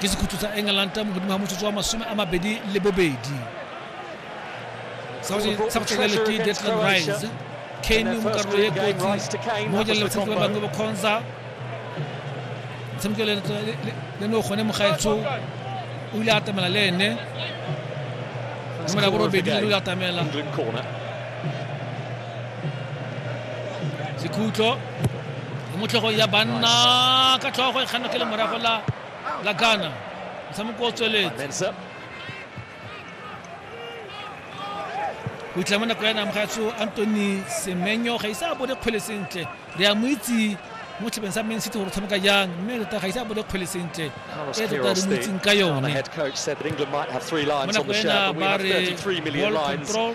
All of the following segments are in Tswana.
ke sekhutso sa england mo godimo ga motsotso wa masome a mabedi le bobedi sa go tlhekele ke detlan rice kane mo karolo e kotsi mo go jalela batshameki ba bangwe ba kgonza motshameki le ne o gone mogaetsho o ile atamela le ene nomero ya borobedi le o atamela sekhutlo motlhegong ya banna ka tlhogo e kganna ke le morago la la ghana motshameko o tsweletse go itlha mo nako ya namogatso antony semenyo ga ise a bone kgwele sentle re a mo itse mo tlhabeng sa main city gore tshameka jang mme tota ga ise a bone kgwele sentle e tota re mo itseng ka yone mo nako ena ba re ball control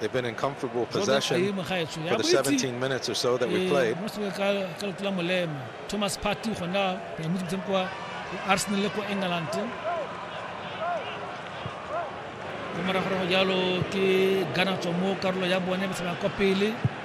They've been in comfortable possession for the 17 minutes or so that we played. Thomas Partey gona re mo ditseng kwa Arsenal le kwa England. Go morago go jalo ke Ghana tswa mo karolo ya bone ba tsena kwa pele.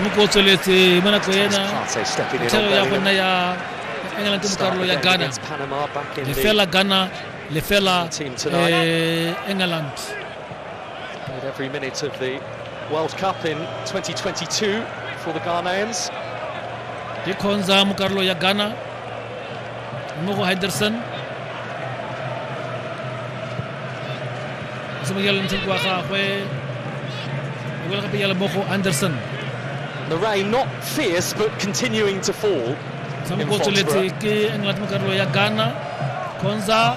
motshameko o tsweletse mo nako ena thero ya go nna ya england mo karolo ya ghana lefela ghana lefela england Played every minute of the World Cup in 2022 for the Ghanaians. ikhonza mo karolo ya ghana mo go henderson semokela ntseng wa gagwe o bela gape yala mo go anderson The rain not fierce but continuing to fall. sa In mo go tsweletse Foxborough. ke england mo karolo ya ghana khonza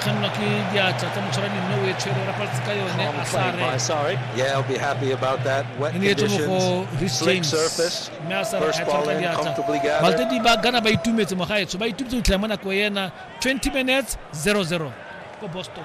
kgannwa ke diatla tsa motshwarani mme o e tshwere o rapaletse ka yone a sare e ne etswe mo go ris james mme a sare a tshwara ka diatla baltedi ba gana ba itumetse mogaetsho ba itumetse go tlhela mo nako ena 20 minutes 00 ko boston